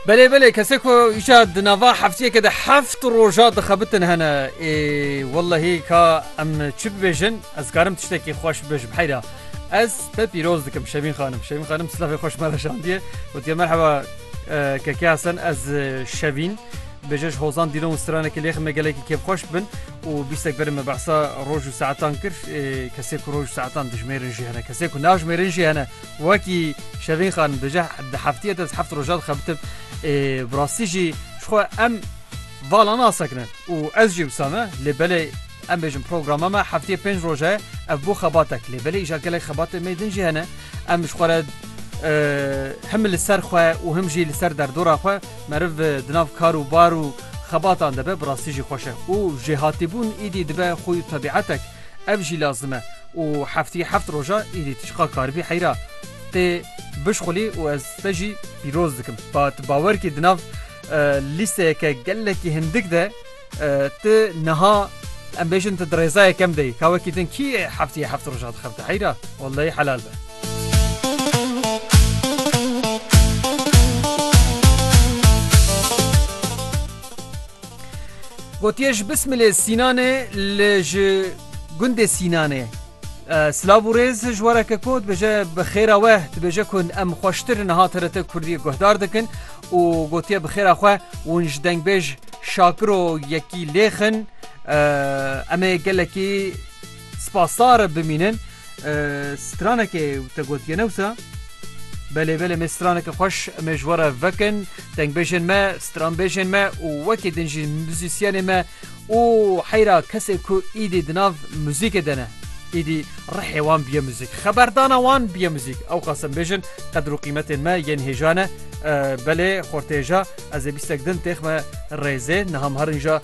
Belê belê kesê ku îşa di nava heftiyeke de heft roja dixebitin hene ê wellehî ka em çi bibêjin ez karim tiştekî xweş bibêjim heyra ez te pîroz dikim şemîn xanim şemîn xanim silavê xweş me veşandiye gotiye merheba keke hesen ez şevîn bêje ji hozan dîlon û stranekî lêxim me gelekî kêfxweş bin û bîstek berin me behsa roj û saetan kir kesê ku roj û saetan dijmêrin jî hene kesê ku najmêrin jî hene Wekî Şevîn Xan dije di heftiyê de di heft roja dixebitin. Ê bi rastî jî ji xwe em vala nasekinin û ez jî wisa me lê belê em bêjin programa me heftiyê pênc roj e ev bo xebatek lê belê îja gelek xebatên mê din jî hene em ji xwe re him li ser xwe û him jî li ser derdora xwe meriv di nav kar û bar û xebatan de be bi rastî jî xweş e û jêhatîbûn îdî dibe xûy û tebîetek Ev jî lazim e û hefteyê heft roja êdî tu çiqa karibî heyra tê bişxulî û ez te jî pîroz dikim. Ba tu bawer kî di nav lîsteyeke gelekî hindik de tu niha em bêjin tu di rêza yekem de yî. Ka wekî din kî hefteyê heft roja dixebite heyra? Welleyî helal be. Gotiye ji Bismilê Sînanê li ji gundê Sînanê. Silav û rêz ji wareke ku dibêje bi xêra we dibêje ku em xweştir niha TRT Kurdî guhdar dikin û gotiye bi xêra xwe hûn ji dengbêj Şakiro yekî lêxin em ê gelekî Spasdar bimînin stranekê te gotiye ne wisa? Belê belê me straneke xweş em ê ji we re vekin dengbêjên me, stranbêjên me û wekî din jî muzîsyenê me û heyra kesê ku îdî di nav muzîkê de ne îdî rihê wan biye muzîk xeberdana wan biye muzîk ew qas em bêjin qedir û qîmetên me yên hêja ne belê xortêja ez ê bîstek din têxme rêzê niha me herin ja